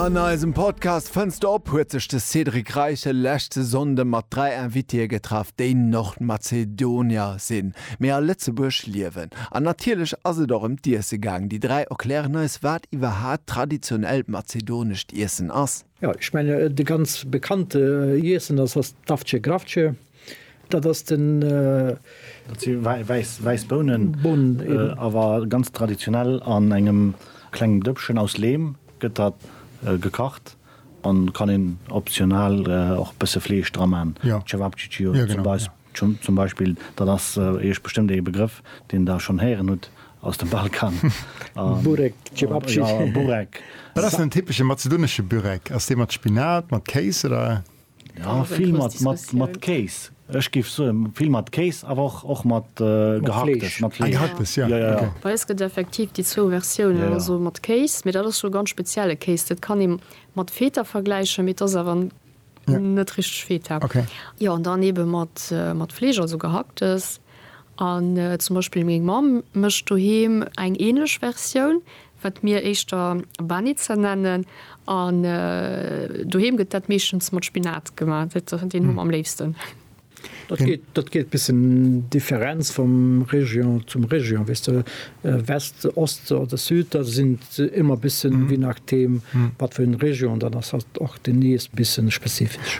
An eisem Podcast Fënns de op? huet sech de Cédric Reichel leschte Sonnde mat dräi Invitéeë getraff, déi Nordmazedonier sinn, mee a Lëtzebuerg liewen. An natierlech ass et och ëm d'Iesse gaang. Déi dräi erklären eis, wat iwwerhaat traditionellt mazedonescht Iessen ass. Jo, ech mengen, de ganz bekannte Iessen ass d'Avce Gravce. Dat ass wäiss Bounen, awer ganz traditionell an engem klengem Dëppchen aus Leem gëtt dat gekacht an kann een optional och bësse Fleesch dra maan. Cevapcici zum Beispill, dat ass iech bestëmmt ee Begrëff deen der schonn héieren hutt aus dem Balkan. Burek. Wat ass den typesche mazedonesche Burek? Ass dee mat Spinat, mat Kéis oder? Jo vill mat mat mat Kéis. Ech géif soen vill mat Kéis awer och och mat Gehacktes mat Fleesch. Gehacktes jo ok. Bei eis gëtt effektiv déi zwou Versiounen, also mat Kéis, mee dat ass jo ganz spezielle Kéis. Dat kann ee mat Feta vergläichen, mee et ass awer net richteg Feta. Jo an dann eebe mat mat Fleesch, also Gehacktes. An zum Beispill meng Mamm mécht doheem eng änlech Versioun, wat mir éischter Banitzer nennen, an doheem gëtt dat meeschtens mat Spinat gemaach, deen hu mer am léifsten. Dat geet bëssen Differenz vum Région zum Région, weess de, West, Ost oder Süd, da sinn et ëmmer bëssen, je nachdeem wat fir eng Région dat ass, och déi nees bëssen spezifesch.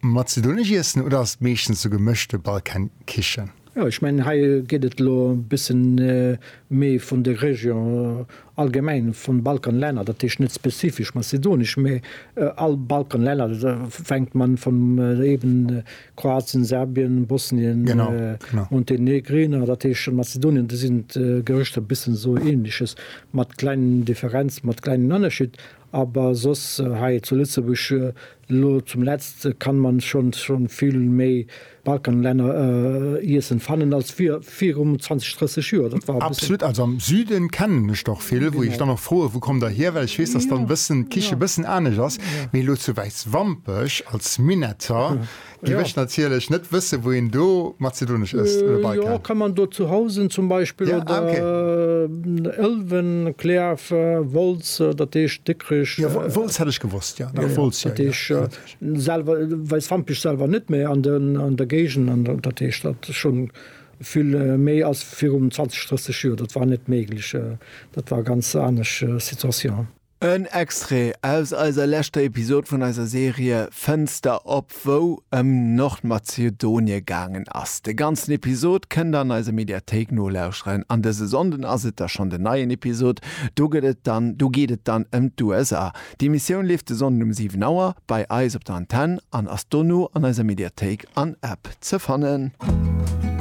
Mat Zitrounegie iessen oder ass et meeschtens sou gemëschte Balkankichen? Jo, ech mengen hei geet et elo e bëssen méi vun de Région allgemeng vun Balkanlänner, dat heescht net spezifesch mazedonesch, mä all Balkanlänner, fänkt man vun eben Kroatien, Serbien, Bosnien, Montenegrin, dat heescht Mazedonien, do sinn d'Gerëschter bëssen sou ähnleches, mat kleng Differenzen, mat klengen Ënnerscheed, awer soss hei zu Lëtzebuerg Lo zum letzt kann man schon schon vill méi Balkanlänner iessen fannen als virum 20, 30 Joer. Dat war e bëssen. Absolut, also am Süden kennen ech der och vill, wou ech dann och froen, wou kommt der hier, well ech weess, dass dann bëssen d'Kiche bëssen anescht ass, mee lo zu Wäiswampech als Minetter, Déi mécht natierlech net wësse wou een do mazedonesch ësst oder bei kann. Jo kann man do zu Housen zum Beispill oder Ëlwen, Klärf, Wolz, dat heescht Dikrech. Jo Wolz hätt ech gewosst jo. Jo jo dat heescht selwer Weißwampech selwer net mä an den an der Géigend an dat heescht dat schonn vill méi ass virum 20, 30 Joer dat war net méiglech dat war ganz anesch Situation. En Extrait aus eiser leschter Episode vun eiser Serie Fënster op, wou ëm Nordmazedonie gaangen ass. De ganzen Episode kënnt der an eiser Mediathéik nolauscheren. An dëse Sonnden ass et da schonn den neien Episode. Do gëtt et dann, do geet et dann ëm d'USA. D'Emissioun leeft de Sonnden um 7 Auer bei eis op der Antenn an ass dono an eiser Mediathéik an App ze fannen.